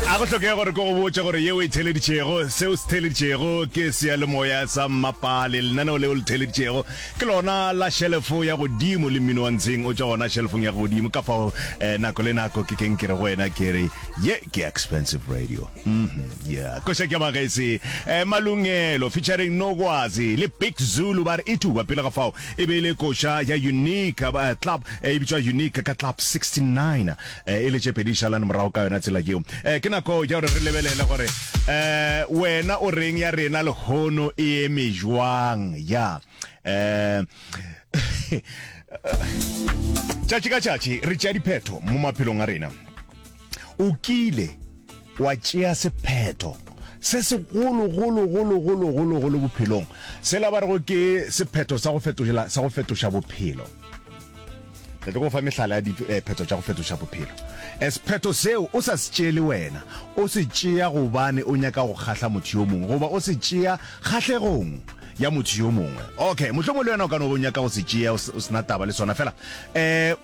a go tlhokega gore ko go botša gore yeo e theleditšego seo se theleditšego ke seyalemoya sa mmapale lenaneo leo le theleditšego ke lona la shelefo ya godimo le mmino wa ntsheng o tša gona shelefong ya godimo ka fao eh, nako le nako ke keng ke re go wena ke re ye ke expensive radio mm -hmm, yeah. koša ke magese eh, malungelo featuring nokwazi le big zulu ba re e tuba pele ga fao e be e le koša ya unique eh, club eh, e bitswa unique ka club 69 e le tše pedi di šalan morago ka yona tsela yeo. Ke nako ya gore re lebelele gore wena o reng ya rena lehono e eme jwang. Ya. Tšatši ka tšatši re tšea diphetho mo maphelong a rena. O kile. wa tšea sephetho se segolo golo golo golo golo golo bophelong, sela ba rego ke sephetho sa go fetošela sa go fetoša bophelo. Re tlo go fa mehlala ya diphetho tša go fetoša bophelo. Sephetho seo o sa se tšeele wena, o se tšea gobane o nyaka go kgahla motho yo mongwe goba o se tšea kgahlegong ya motho yo mongwe. Okay, mohlomongwe le wena o ka no ba o nyaka go se tšea o se na taba le sona. Fela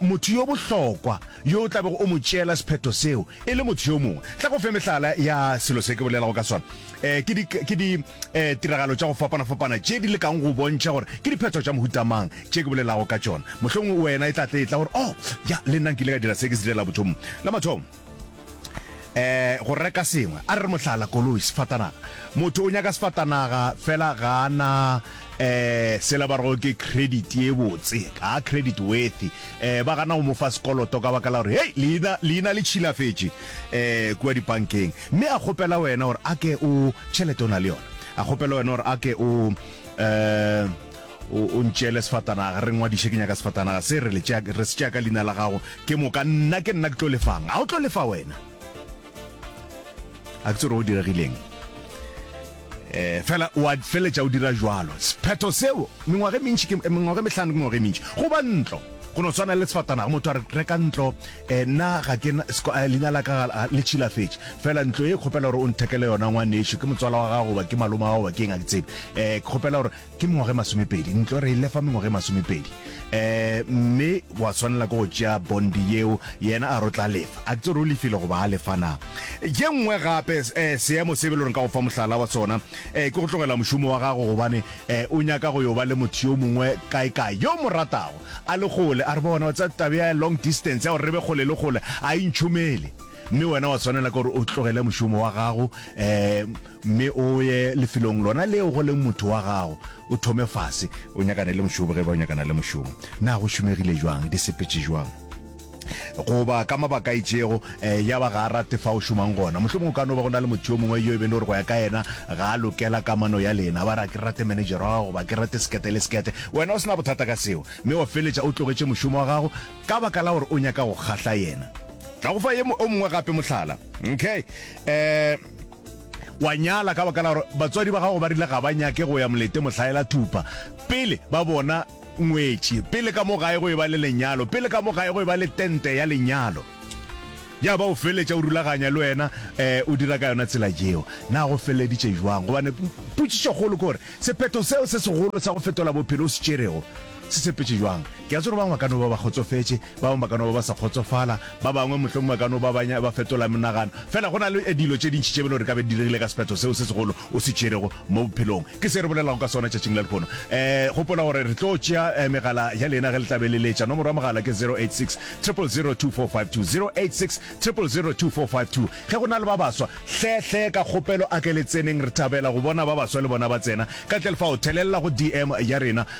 motho yo bohlokwa yo o tla bego o mo tšeela sephetho seo, E le motho yo mongwe, tla go fe mehlala ya selo se ke bolelago ka sona. Eh, ke di, ke di eh, tiragalo tša go fapana-fapana tše di lekang go bontšha gore ke diphetho tša mohuta mang tše ke bolelago ka tšona. Mohlomongwe wena e tla tle etla gore, oh, ya, le nna nkile ka dira se ke se direla bothomong. La mathomo, eh, go reka sengwe. A re re mohlala, koloi, sefatanaga. Motho o nyaka sefatanaga, fela ga a na Eh, sela ba rego ke credit ye botse ka credit worthy eh ba gana go mo fa sekoloto ka baka la gore hey leina leina le tšhilafetše eh kua dipankeng mme a kgopela wena gore a ke o tšhelete o na le yona a kgopela wena gore a ke o eh o o ntšele sefatanaga re ngwadiše ke nyaka sefatanaga se re le tšea- re se tšea ka leina la gago ke moka nna ke nna ke tlo lefang a o tlo lefa wena a ke tsore o diregileng eh fela wa feletša o dira jwalo sephetho seo mengwage mentši ke mengwage mehlano ke mengwage mentši go ba ntlo go no tshwana le sefatanaga motho a re reka ntlo eh na ga ke eh, leina la ka ah, le tšhilafetše fela ntlo e kgopela gore o nthekele yona ngwaneso ke motswala wa gago ba ke maloma wa gago ba ke eng a ke tsebe eh ke kgopela gore Ke mengwaga e masomepedi, ntlo re e lefa mengwaga e masomepedi. Um, mme wa tshwanela ke go tšea bondi yeo, yena a re o tla lefa. A ke tsore o lefile goba a lefa na? Ye nngwe gape, um, seemo se be le gore nka go fa mohlala wa sona, um, ke go tlogela mošomo wa gago gobane, um, o nyaka go yo ba le motho yo mongwe kae-kae, yo o mo ratago, a le kgole. A re bona, wa tseba taba ya long distance, ya gore re be kgole le kgole, a e ntšhomele. Mme wena wa tshwanela ke gore o tlogele mošomo wa gago, um, Mme o ye lefelong lona leo go leng motho wa gago, o thome fase. O nyakane le mošomo ge e ba o nyakana le mošomo. Na go šomegile bjang? Di sepetše bjang? Goba ka mabaka a itšego, ya ba ga a rate fa o šomang gona. Mohlomongwe go ka no ba go na le motho yo mongwe yo e beng le gore go ya ka yena ga a lokela kamano ya lena. A ba re, A ke rate manejara wa gago? Goba, A ke rate sekete le sekete? Wena o se na bothata ka seo, mme wa feletša o tlogetše mošomo wa gago ka baka la gore o nyaka go kgahla yena. Ka go fa ye o mongwe gape mohlala. Okay. Wa nyala ka baka la gore batswadi ba gago ba rile ga ba nyake go ya molete mohlaela thupa pele ba bona ngwetši, pele ka mo gae go e ba le lenyalo, pele ka mo gae go e ba le tente ya lenyalo. Ya ba o feleletša o rulaganya le wena um o dira ka yona tsela yeo. Na go feleleditše bjang? Gobane potšišokgolo ke gore sephetho seo se segolo sa go fetola bophelo o se tšerego, Se tshepetše bjang? Ke a tseba gore ba bangwe ba ka no ba ba kgotsofetše, ba bangwe ba ka no ba ba sa kgotsofala, ba bangwe mohlomongwe ba ka no ba ba nya, ba fetola menagano. Feela go na le dilo tše dintši tše bjale gore e ka be di diregile ka sephetho seo se segolo o se tšerego mo bophelong. Ke se re bolelago ka sona tšatšing la lehono. E, gopola gore re tlo tšea e, megala ya lena ge le tla be le letša. Nomoro ya mogala ke 086 000 2452, 086 000 2452. Ge go na le ba baswa, hle, hle, ka kgopelo a ke le tseneng. Re thabela go bona ba baswa le bona ba tsena ka tle lefao. Thelelela go DM ya rena.